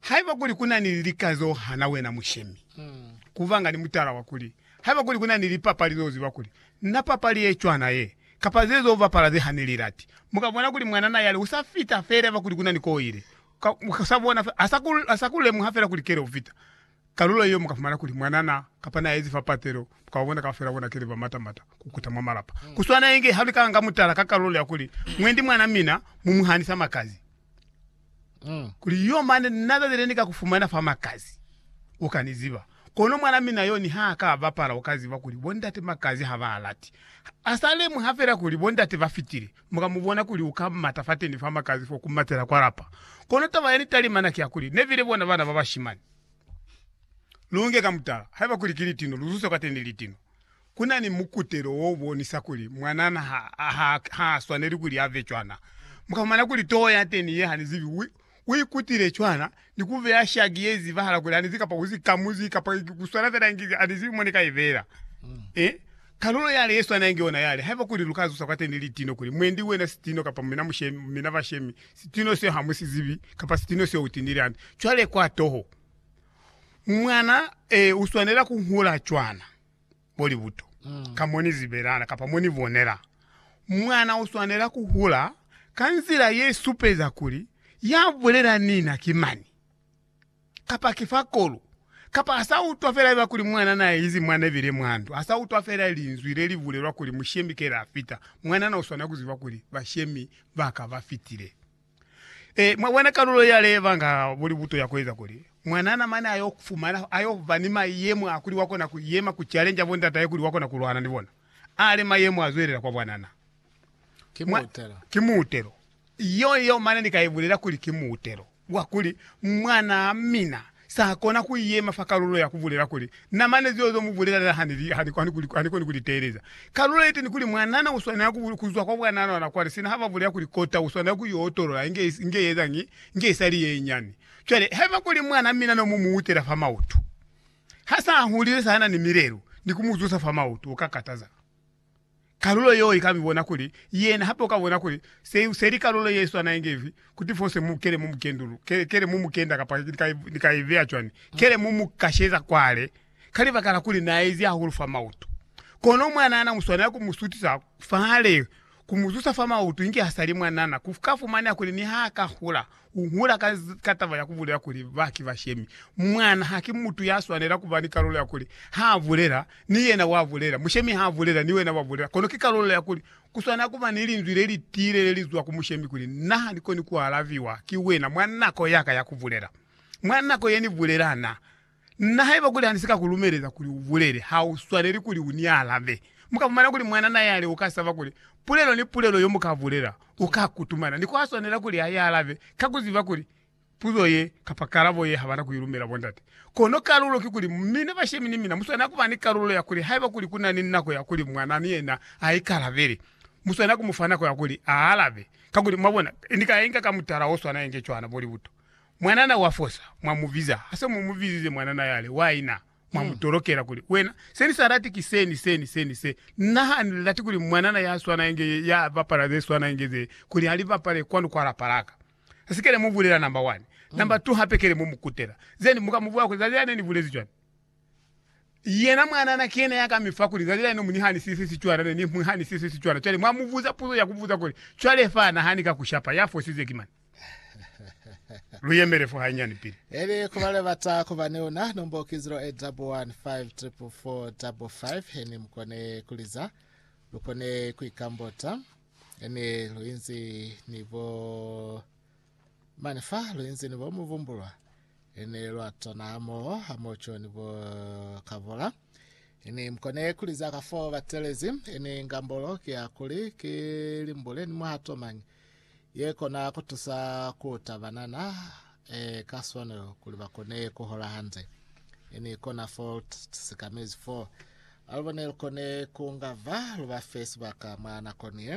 Haiba kuli ku na ni lika z'o hana wena mushemi, ku ba nga ni mutala wa kuli, haiba kuli ku na ni lipapali z'o ziba kuli, Na papali ye cwana ye, kapa ze z'o bapala ze ha ni li lati, mu ka bona kuli mwanana yale u sa fita fela haiba kuli ku na ni k'o ile. Ka, ka, sa bona fela, ha sa ku, ha sa ku lemuha fela kuli kele u fita kalulo yeo, mu ka fumana kuli mwanana, kapa n'a ezi fa patelo, mu ka ba bona kaufela bona kele ba mata-mata ku kuta mwa malapa. Ku swana inge ha lu ka nga mutala ka kalulo ya kuli, Mwendi mwan'a mina, mu mu hanisa makazi. Kuli yo mane na tabile ni ka ku fumana fa Makazi, u ka ni ziba. Kono mwana mina yo niha a ka bapala u ka ziba kuli bo ndate Makazi ha ba lati. A sa lemuha fela kuli bo ndate ba fitile, mu ka mu bona kuli u ka mata fateni fa Makazi fo ku matela kwa lapa. Kono taba ya ni talimana ki ya kuli, ne bile bona bana ba bashimani. Lu nge ka mutala, haiba kuli ki litino, lu zuse kwateni litino. Ku na ni mukutelo wo bonisa kuli mwanana ha a swaneli kuli a ve cwana. Mu ka fumana kuli toho ya teni ye ha ni zibi u ikutile cwana ni ku beya shaki ye zibahala kuli ha ni zibi kapa u sikamuzi kapa ku swana fela inge ha ni zibi mo ni ka i beela. Ee, kalulo yale ye swana inge yona yale. Haiba kuli lu ka zusa kwa teni litino kuli, Mwendi, wena sitino, kapa mina mushemi, mina bashemi, sitino seo ha mu si zibi, kapa sitino seo u tinile hande. Cwale kwa toho, mwana, ee, u swanela ku hula cwana. bo libuto, ka mo ni zibelana kapa mo ni bonela. Mwana u swanela ku hula ka nzila ye supeza kuli ya bulela ni na ki mani, kapa ki fa kolu, kapa a sa utwa fela iba kuli mwanana a izi mwa nebile mwa ndu, a sa utwa fela linzwi le li bulelwa kuli mushemi kele a fita. Mwanana u swanela ku ziba kuli bashemi ba ka ba fitile. E, mwa bona kalulo ya leva nga buli buto ya kueza kuli mwanana mane ayo fumana ayo ba ni mayemo a kuli wa kona ku yema ku challenge bo ndataye kuli wa kona ku lwana ni bona. Ale mayemo a zwelela kwa bwanana. Ki Mwa, muutelo. ki muutelo. Iyo, iyo mane ni ka ibulela kuli ki muutelo wa kuli mwanaa mina Sa kona ku yema fa kalulo ya ku bulela kuli, Na mane zeo zo mu bulelela ha ni koni ku li teeleza. Kalulo ye teni kuli, Mwanana u swanela ku zwa kwa bwanana ona kwale, sina ha ba bulela kuli kota u swanela ku yo otolola inge i ezañi, inge i sa li ye nyani. Cwale, haiba ku li mwana mina no mu mu utela fa mautu, ha sa a hulile sa na ni milelo, ni ku mu zusa fa mautu, u ka kataza. kalulo yeo ika mibona kuli yena hape uka bona kuli se useli kalulo ye swana inge ifi, kuti fose mu kele mu mukendulu, kele, kele mu mukenda kapa ni ka, ni ka ibeya cwani, kele mu mu kasheza kwale, ka libaka la kuli na ezi hahulu fa mautu. Kono mwanana mu swanela ku mu sutisa fale, ku mu zusa fa mautu inge ha sali mwanana, ku ka fumaneha kuli niha aka hula, U hula ka, ka taba ya ku bulela kuli ba ki bashemi. Mwana ha ki mutu ya swanela ku ba ni kalulo ya kuli ha a bulela, ni yena wa bulela. Mushemi ha a bulela, ni wena wa bulela. Kono ki kalulo ya kuli ku swanela ku ba ni linzwi le li tiile le li zwa ku mushemi kuli, Na ha ni koni ku alabiwa ki wena mwa nako ya ka ya ku bulela. Mwa nako ye ni bulela, na Na haiba kuli ha ni si ka ku lumeleza kuli u bulele, ha u swaneli kuli u ni alabe. Mu ka fumana kuli mwanana yale u ka saba kuli pulelo ni pulelo yo mu ka bulela, u ka kutumana, ni ku ha swanela kuli a i alabe ka ku ziba kuli puzo ye kapa kalabo ye ha ba na ku i lumela bondate. Kono kalulo ki kuli, mina bashemi ni mina mu swanela ku ba ni kalulo ya kuli haiba kuli ku na ni nako ya kuli mwana ni yena a ikalabele, mu swanela ku mu fa nako ya kuli a alabe. Kakuli, mwabona, ni ka inga ka mutala o swana inge cwana bo libuto. Mwanana wa fosa, mwa mu biza. Ha se mu mu bizize mwanana yale, wa ina, mwa mu tolokela kuli, Wena, se ni sa lati ki se, ni se, ni se, ni se. Na ha ni lati kuli mwanana ya swana inge ye, ya bapala ze swana inge ze, kuli a li bapale kwanu kwa lapa la ka. Ha si kele mu bulela namba wani. Namba tu hape kele mu mu kutela. Zeni, mu ka mu bula kuli, Zazia ne ni bulezi cwani? Yena mwanana ki yena ya ka mi fa kuli, Zali la ino mu ni hanisise sicwala, ne ni mu hanisise sicwala. Cwale mwa mu buza puzo ya ku buza kuli, Cwale fa na hani ka ku shapa, ya fosize ki mani? Lu yemele fo hanyani pili. Eli ku ba lebata ku ba ni una, nombo ki 0815444555, heni mu kone ku liza, lu kone ku ikambota, heni lu inzi ni bo Mane fa lwi nzini bo mu vumbulwa, ini lwa tanaa moo ha mo Joni bo ka vola. Ini mkone kuli za ka foo ba telezi, ini ngambolo ki ya kuli ki limbule ni muhato mañi ye kona ku tusa ku ta banana e ka swanelo kuli ba kone ku hola hande. Ini kona fo lu sikamezi foo. Alubo ne lu kone ku nga va lu ba fe sibaka mwa nakoni ye.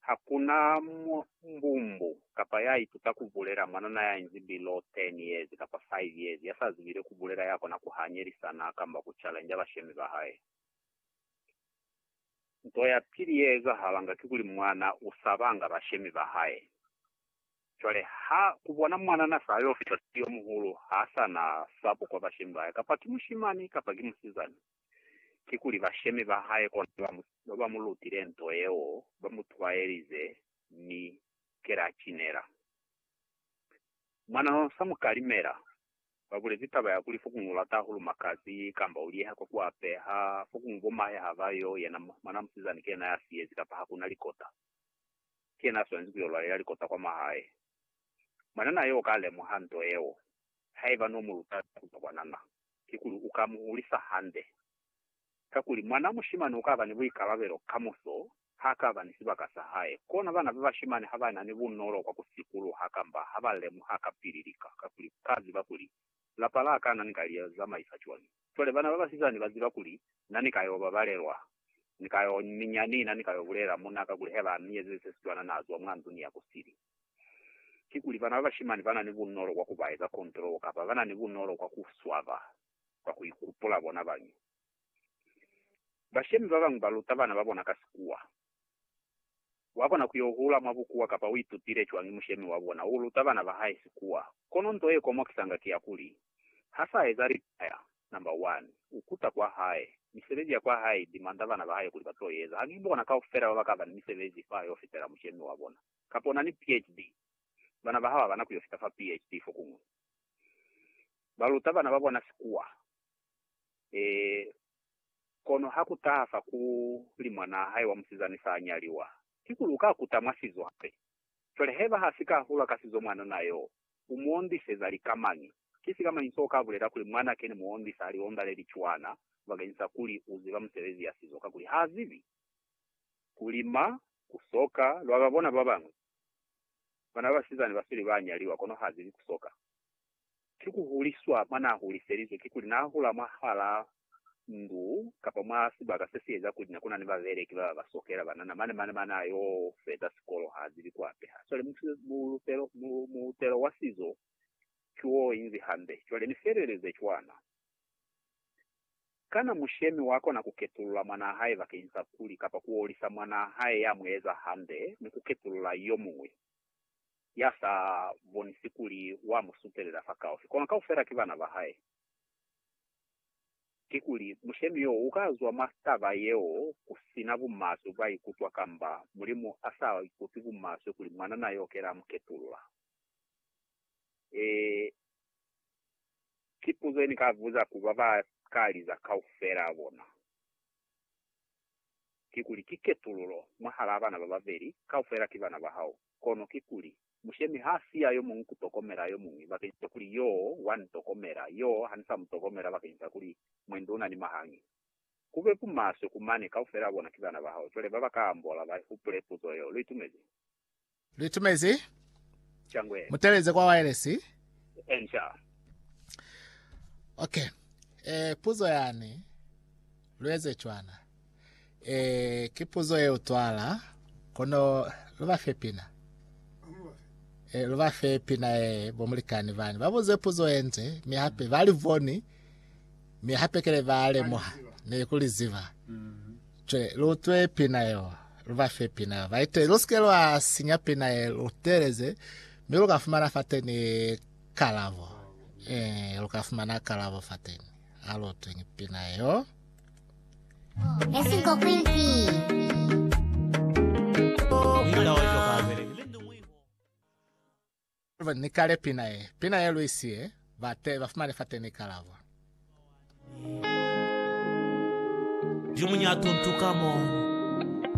Ha ku na mbumbu kapa ya ituta ku bulela, mwanana ya inzi bilo 10 years kapa 5 years ya sa zibile ku bulela ya kona ku hanyelisana kamba ku challenge bashemi ba hae. Nto ya pili ye ezahalanga kikuli mwana u sabanga bashemi ba hae. Cwale ha ku bona mwanana sa yo fita siyo muhulu, ha sa na sabo kwa bashemi ba hae, kapa ki mushimani kapa ki musizana. Kikuli bashemi ba hae kona ba ba mu lutile nto yeo, ba mu twaelize, mi kela a cinela. Mwanana sa mu kalimela, ba bulezi taba ya kuli fokuñwi u lata hahulu makazi, kamba u liyeha kwa ku apeha, fokuñwi bomahe ha ba yo, yena mwanaa musizana ki yena ya siyezi kapa ha ku na likota, ki yena a swanezi ku yo lwalela likota kwa mwahae. Mwanana yo o ka lemuha nto yeo, haiba no mu luta ku zwa kwanana. kikuli u ka mu hulisa hande. Kakuli, mwanaa mushimani u ka ba ni buikalabelo kamuso ha ka ba ni sibaka sa hae. Kona bana ba bashimani ha ba na ni bunolo kwa ku sikuluha kamba ha ba lemuha kapili lika, kakuli ba ziba kuli, Lapa la ka na ni ka li zamaisa cwañi? Cwale bana ba basizani ba ziba kuli, Na ni ka yo babalelwa. Ni ka yo minya ni na ni ka yo bulela muna, kakuli haiba a mi ezezi se si cwana, na zwa mwa ndu ni ya ku sili. kikuli bana ba bashimani ba na ni bunolo kwa ku ba eza kontrolo kapa ba na ni bunolo kwa ku swaba kwa ku ikupula bona bañi. Bashemi ba bañwi ba luta bana ba bona ka sikuwa. Wa kona ku yo hula mwa bukuwa kapa u itutile cwañi mushemi wa bona u luta bana ba hae sikuwa, kono nto ye komokisanga ki ya kuli, ha sa eza litaya, namba wani, u kuta kwa hae, misebezi ya kwa hae i dimanda bana ba hae kuli ba to i eza. Ha ki bona kaufela ba ba ka ba ni misebezi fa yo fitela mushemi wa bona. kapa una ni PHD, bana ba hao habana kuyo fita fa PHD fokuñwi. Ba luta bana ba bona sikuwa. Ee, kono ha ku taha fa ku li mwanaa hae wa musizani sa a nyaliwa, kikuli u ka kuta mwa sizo hape? Cwale haiba ha si ka hula ka sizo mwanuna yo, u mu ondiseza lika mañi? Ki sika mañi so ka bulela kuli mwana ke ni mu ondisa ha liondaleli cwana bakeñisa kuli u ziba musebezi ya sizo? Kakuli ha zibi ku lima Ku so ka lwa ba bona ba bañwi. Bana ba basizani ba sweli ba nyaliwa, kono ha zibi ku so ka. Ki ku huliswa mwa n'a huliselizwe, kikuli n'a hula mwahal'a ndu kapa mwa sibaka se si eza kuli ne ku na ni babeleki ba ba ba sokela banana mane, mane, mane a y'o feza sikolo, ha zibi ku apeha. Ha sweli mulutelo, mulutelo wa sizo ki w'o inzi hambe. Cwale ni feleleze cwana. Kana mushemi wa kona ku ketulula mwanaa hae bakeñisa kuli kapa ku olisa mwanaa hae ya mu eza hande ni ku ketulula yo muñwi ya sa bonisi kuli wa mu sutelela fakaufii? Kono kaufela ki bana ba hae. Kikuli, mushemi yo u ka zwa mwa taba yeo ku si na bumaswe bwa ikutwa kamba Mulimu a sa ikutwi bumaswe kuli mwanana yo kela a mu ketulula? Ee, ki puzo ye ni ka buza ku ba ba ka liza kaufela a bona, kikuli, Ki ketululo mwahalaa bana ba babeli? Kaufela ki bana ba hao. Kono kikuli, Mushemi ha si ya yo muñwi ku tokomela yo muñwi, bakeñisa kuli yoo wa ni tokomela, yoo ha ni sa mu tokomela, bakeñisa kuli mwendi u na ni mahangi. Ku be bumaswe ku mane, kaufela a bona ki bana ba hao. Cwale ba ba ka ambola ba hupule puzo yeo. Lu itumezi? Litumezi, muteleze kwa waelesi. Okay. Eh, puzo yani lueze cwana. Eh, ki puzo ye utwala kono luba fe pina. Eh, luba fe pina ye bomulikani bani. Babuze puzo yenze, mi hape bali voni, mi hape kele ba lemoha ne kuliziba. Mm -hmm. Cwe, lu twe pina yeo, lu ba fe pina yeo. Ba ite, lu sike lwa sinya pina ye lu teeleze, mi lu ka fumana fateni kalabo. Eh, lu ka fumana kalabo fateni. A lu utweng pina yeo. Esinko kwimpi. Wina wa Jokaabele. Ni kale pina ye, pina ye Luis ye, ba te, ba fumane fate ni kalabo. Limuñatu ntu ka mo.